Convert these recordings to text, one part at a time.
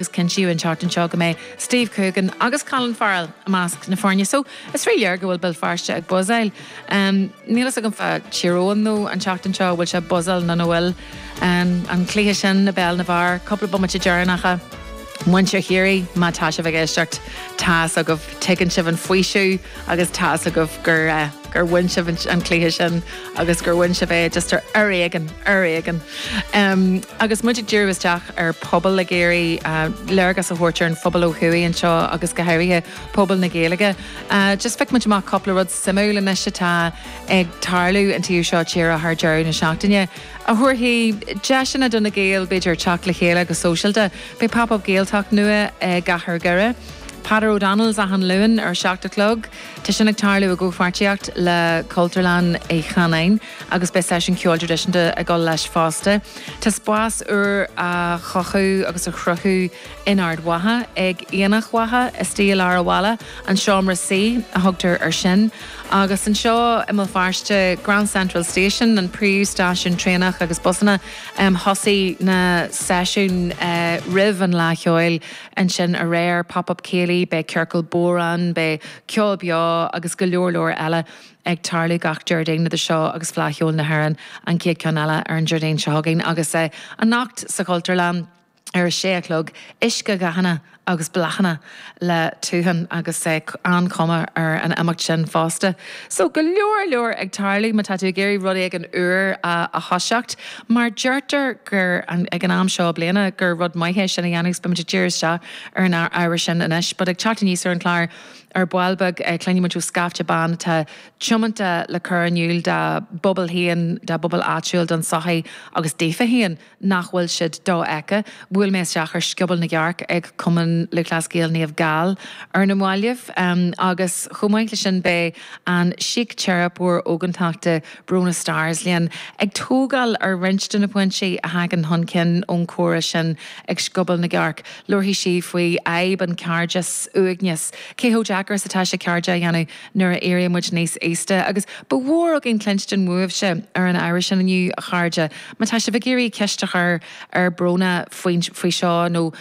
Is cinntíodh an tseachtain seo go mbeidh Steve Coogan agus Colin Farrell i measc na foirne so is rí-léir go bhfuil Béal Feirste ag buzzáil. Níl fhios agam fá Thír Eoghain now an tseachtain seo bhfuil sé buzzáil nó nach bhfuil. An cluiche sin i bpeil na bhfear, cúpla bomaite deireanacha. Muintir Chiarraí má tá sibh ag éisteacht, tá fhios agaibh, tuigeann sibh an faoiseamh agus tá fhios agaibh gur. gur bhain sibh an cluiche sin agus gur bhain sibh é just ar ar éigean, ar éigean. Agus muid ag díriú isteach ar pobal ag iarraidh léargas a thabhairt ar an phobal ó thuaidh anseo agus go háirithe pobal na Gaeilge, just phioc muid amach cúpla rud suimiúil anois atá ag tarlú an taobh seo tíre thar deireadh na seachtaine a thabharfaidh deiseanna do na Gaeil b'fhéidir teacht le chéile go sóisialta. Beidh Pop Up Gaeltacht nua i gCathair Dhoire. Peadar O'Donnell's achan Luan ar a seacht a chlog. Tá sin ag tarlú i gcomhpháirtíocht le Cultúrlann Uí Chanáin agus beidh seisiún ceoil traidisiúnta ag dul leis fosta. Tá spás úr á chothú agus á chruthú in Ard Mhacha ag Aonach Mhacha istigh i lár an bhaile, an Seomra Suí a thugtar air sin. Agus anseo i mBéal Feirste, Grand Central Station, an príomhstáisiún traenach agus busanna, thosaigh na seisiúin roimh an Fhleadh Cheoil. Ansin aréir, Pop Up Céilí, beidh Ciorcal Bodhráin, beidh ceol beo agus go leor leor eile ag tarlú gach Déardaoin idir seo agus Fleadh Cheoil na hÉireann, an chéad ceann eile ar an Déardaoin seo chugainn agus anocht sa Chultúrlann ar a sé a chlog, Uiscedhathanna agus Bláthanna le Tuhan agus an-chuma ar an imeacht sin fosta. So go leor leor ag tarlú má tá tú ag iarraidh rud éigin úr a thoiseacht. Mar deirtear gur, ag an am seo bliana, gur rud maith é sin a dhéanamh agus beimid ag díriú isteach ar an ábhar sin anois. But ag teacht aníos ar an chlár ar ball beag cluinfimid ó scaifte ban atá tiomanta le cur in iúl dá bpobal féin, dá bpobal áitiúil, don sochaí agus daofa féin nach bhfuil siad dofheicthe. Bhuail mé isteach ar Scioból na gCearc ag Cumann Lúthchleas Gael Naomh Gall ar na maillibh agus chomh maith le sin beidh an síciteiripeoir ógántachta, Bronagh Starrs linn, ag tógáil ar roinnt de na pointí a thagann chun cinn ón chomhrá sin ag Scioból na gCearc. Labharfaidh sí faoi fhadhb an chairdeas, uaigneas, cé chomh deacair is atá sé cairde a dhéanamh nuair a éiríonn muid níos aosta, agus ba mhór againn cluinstin uaibhse ar an ábhar sin inniu, a chairde. Má tá sibh ag iarraidh ceist a chur ar Bronagh faoi seo nó.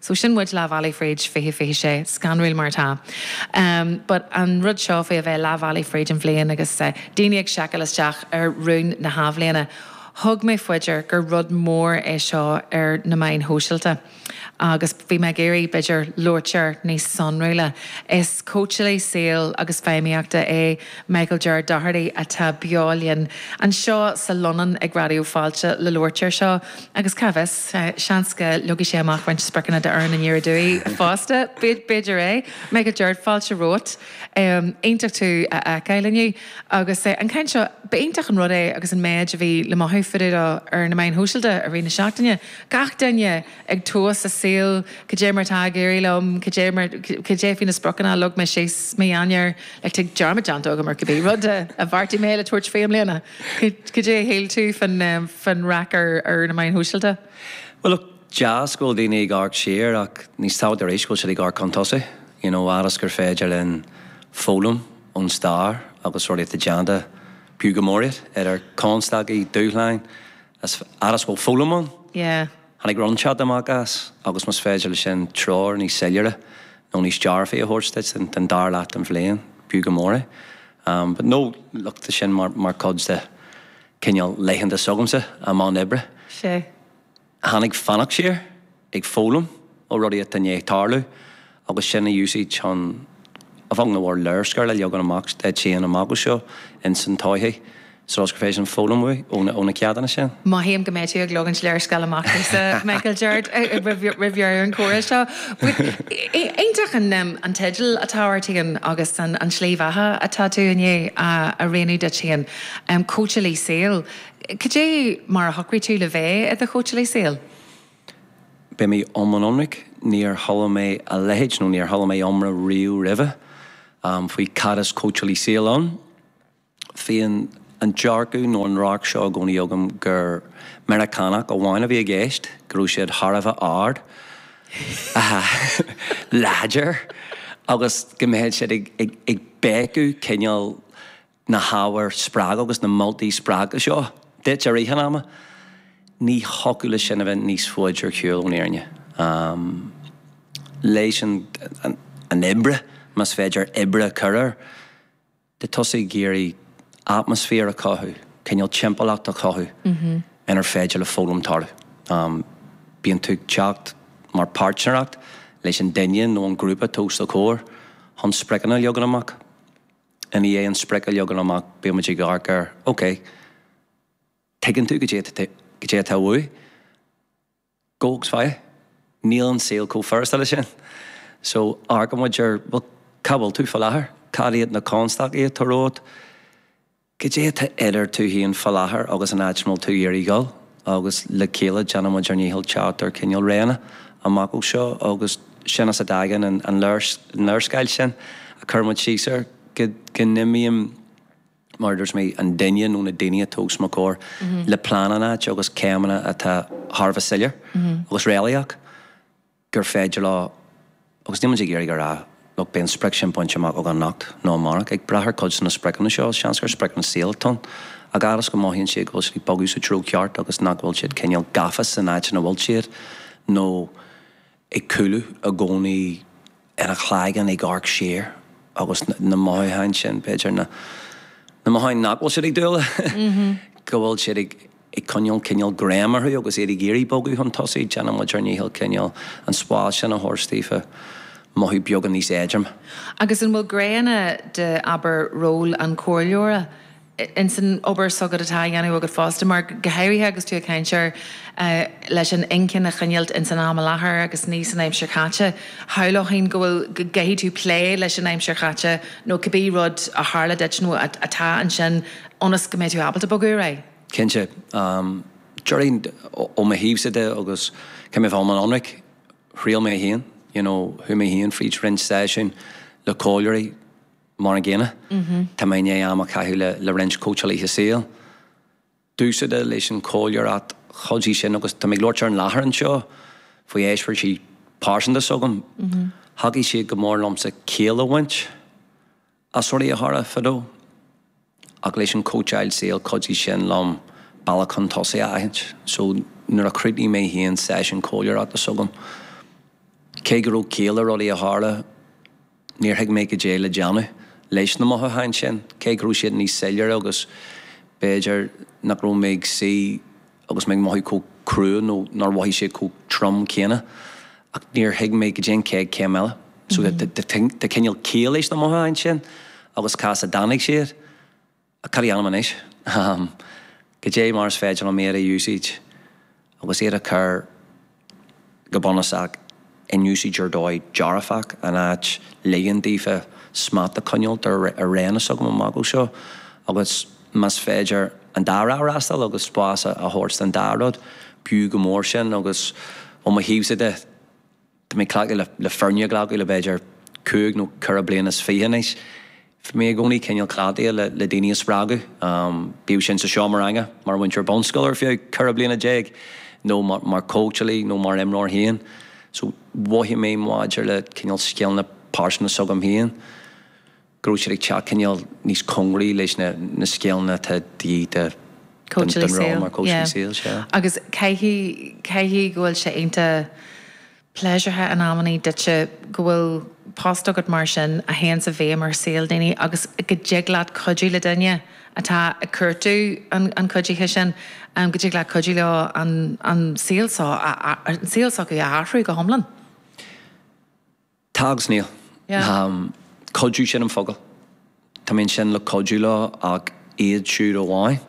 So sin muid leath bealaigh fríd 2026, scanrúil mar atá. But an rud seo faoi a bheith leath bealaigh fríd an bhliain agus daoine ag seiceáil isteach ar rúin na hathbhliana, thug mé fá dear gur rud mór é seo ar na meáin shóisialta agus bhí mé ag iarraidh, b'fhéidir, labhairt air níos sonrúla. Is cóitseálaí saoil agus feidhmíochta é Michael Ger Doherty atá beo linn anseo sa Lunnon ag Raidió Fáilte le labhairt air seo. Agus cá bhfios, seans go leagfaidh sé amach roinnt spriocanna do Éirinn aniar aduaidh fosta. B'fhéidir é. Michael Cirt, fáilte romhat. Iontach tú a fheiceáil inniu. Agus an ceann seo, ba iontach an rud é agus an méid a bhí le mothú fá dtaobh dó ar na meáin shóisialta i rith na seachtaine. Gach duine ag tomhas a saol, cad é mar atá ag éirí liom, cad é mar, cad é faoi na spriocanna a leag mé síos mí Eanáir, like, dearmad déanta agam ar cibé rud a bheartaigh mé le tabhairt faoi i mbliana. Cad é a shíl tú fán raic ar na meáin shóisialta? Bhuel, look, deas go bhfuil daoine ag amharc siar ach níos tábhachtaí arís go bhfuil siad ag amharc chun tosaigh. You know, fhad is gur féidir linn foghlaim ón stair agus rudaí atá déanta, b'fhiú go mór iad, idir constaicí, dúshláin. Is fhad is bhfuil foghlaim ann, yeah. Tháinig roinnte de amach as agus más féidir le sin treoir níos soiléire nó níos dearfaí a thabhairt duit don dara leath den bhliain, b'fhiú go mór é. But no, look, tá sin mar chuid de cineál laethanta s'agamsa i mbun oibre. Sea. Tháinig fanacht siar. ag foghlaim ó rudaí atá in ndiaidh tarlú agus sin a úsáid chun a bheag nó a mhór léarscáil a leagan amach duit féin amach anseo ins an todhchaí so is gur féidir sin foghlaim uaidh ó na ceachtanna sin. Mothaím go mbeidh tú ag leagaint léarscáil amach domhsa Michael Geard roimh dheireadh an chomhrá seo. Iontach an teideal atá ort fhéin agus an slí bheatha atá tú i ndiaidh a roghnú duit fhéin, cóitseálaí saoil. Cad é mar a shocraigh tú le bheith i do chóitseálaí saoil? Beidh mé iomlán ionraic, níor chuala mé a leithéid nó níor chuala mé iomrá riamh roimhe faoi cad is cóitseálaí saoil ann. Bhí an dearcadh nó an radharc seo i gcónaí agam gur Meiriceánach amháin a bhí i gceist, go raibh siad thar a bheith ard, láidir agus go mbeadh siad ag béiceadh cineál. na hábhair spreagtha agus na moltaí spreagtha seo duit i rith an ama, ní thiocfadh le sin a bheith níos faide ar shiúl ón fhírinne. Leis an oibre, más féidir oibre a chur air, tá tusa ag iarraidh atmaisféar a chothú, cineál timpeallacht a chothú inar féidir le foghlaim tarlú. Bíonn tú ag teacht mar páirtnéireacht leis an duine nó an grúpa atá os do chomhair chun spriocanna a leagan amach. I ndiaidh an sprioc a leagan amach bíonn muid ag amharc ar, ok, tuigeann tú cad é atá uait? Gabh agus faigh é. Níl an saol chomh furasta le sin. So amharcann muid ar, bhuel, cá bhfuil tú faoi láthair? Cad iad na constaicí atá romhat? Cad é atá idir tú féin faoi láthair agus an áit a bhfuil tú ag iarraidh dhul? agus le chéile déanfaimid ár ndícheall teacht ar chineál réanna amach ó seo agus sin as a dtagann an léarscáil sin a chuir muid síos air go n-imíonn, más é an duine nó na daoine atá os mo chomhair, le plean in áit agus céimeanna atá thar a bheith soiléir agus réalaíoch. gur féidir leo, agus níl muid ag iarraidh a rá, look, beidh an sprioc sin bainte amach againn anocht nó amárach. Ag brath ar cuid de na spriocanna seo, is seans gur sprioc don saol atá ann. A fhad is go mothaíonn siad go bhfuil siad ag bogadh sa treo ceart agus nach bhfuil siad cineál gafa san áit ina bhfuil siad nó ag cúlú i gcónaí ina gcloigeann ag amharc siar agus na mothúcháin sin, b'fhéidir, na mothúcháin nach bhfuil siad ag dul, go bhfuil siad ag ag coinneál cineál greim orthu agus iad ag iarraidh bogadh chun tosaigh, déanann muid ár ndícheall cineál an spás sin a thabhairt daofa mothú beagán níos éadroime. Agus an bhfuil gné ann de, abair, ról an chomhairleora in san obair s'agat, atá á dhéanamh agat fosta, mar go háirithe agus tú ag caint air leis an inchinn a choinneáilt in san am i láthair agus ní san aimsir chaite, shamhlófainn go bhfuil, go gcaithfidh tú plé leis an aimsir chaite nó cibé rud a tharla duit nó atá ansin ionas go mbeidh tú ábalta bogadh ar aghaidh? Cinnte. Déarfainn ó mo thaobhsa de agus le bheith iomlán ionraic, thriail mé féin, you know, chuaigh mé féin fríd roinnt seisiúin le comhairleoirí mar an gcéanna. Tá mé i ndiaidh am a chaitheamh le, le roinnt cóitseálaithe saoil. Bunúsach, leis an chomhairleoireacht chuidigh sin agus tá mé ag labhairt ar an láthair anseo faoi eispéiris pearsanta s'agam, thacaigh sé go mór liomsa ciall a bhaint as rudaí a tharla fadó. Ach leis an cóitseáil saoil cuidigh sin liom bealach chun tosaigh a aithint. So, nuair a chríochnaigh mé féin seisiún comhairleoireachta s'agam, cé go raibh ciall le rudaí a tharla, níor thuig mé goidé le déanamh leis na mothúcháin sin, cé go raibh siad níos soiléire agus b'fhéidir nach raibh mé ag suí agus mé ag mothú chomh crua nó nár mhothaigh siad chomh trom céanna ach níor thuig mé goidé an chéad chéim eile so tá cineál ciall leis na mothúcháin sin agus cá as a dtáinig siad ach caidé a dhéanaim anois? Goidé mar is féidir liom iad a úsáid agus iad a chur go bunúsach, in úsáid ar dóigh dearfach, in áit ligean daofa smacht a choinneáilt ar an réim s'agam amach ó seo, agus más féidir an dá thrá a fhreastal agus spás a thabhairt don dá rud, b'fhiú go mór sin, agus ó mo thaobhsa de, tá mé cleachtaithe le foirne a ghlacadh le b'fhéidir cúig nó ceithre bliana is fiche anois, Bhí mé i gcónaí cineál cleachtaithe le daoine a spreagadh, bíodh sin sa seomra ranga, mar mhúinteoir bunscoile ar feadh ceithre bliana déag, nó mar chóitseálaí nó mar imreoir féin. So, mhothaigh mé maidir leis na cineál scileanna pearsanta s'agam féin, go raibh siad ag teacht cineál níos cóngaraí leis na scileanna atá de dhíth don ról mar chóitseálaí saoil, sea. Agus caithfidh go bhfuil sé iontach. pléisiúrtha in amannaí duitse go bhfuil post agat mar sin a théanns i bhfeidhm ar shaol daoine agus go dtig leat cuidiú le duine atá ag cuartú an chuidithe sin, go dtig leat cuidiú leo an saol seo a, an saol s'acu a athrú go hiomlán. Tá agus níl. Cuidiú, sin an focal. Tá mé ansin le cuidiú leo ach iad siúd amháin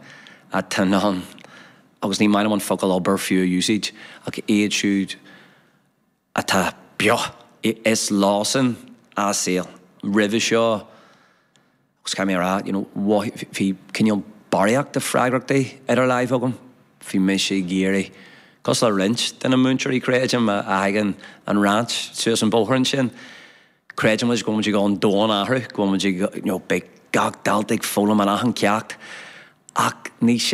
atá in ann, agus ní maith liom an focal obair fiú a úsáid, ach iad siúd atá beo, is leosan a' saol. Roimhe seo, agus caithfidh mé a rá, you know, bhí cineál barraíocht de freagrachtaí idir láimh agam. Bhí mise ag iarraidh, cosúil le roinnt de na múinteoirí creidim a thagann an Rinn suas an bóthar ansin, Creidimid go bhfuilimid ag dul an domhan a athrú, go bhfuilimid ag, you know, beidh gach dalta ag foghlaim in achan ceacht ach ní.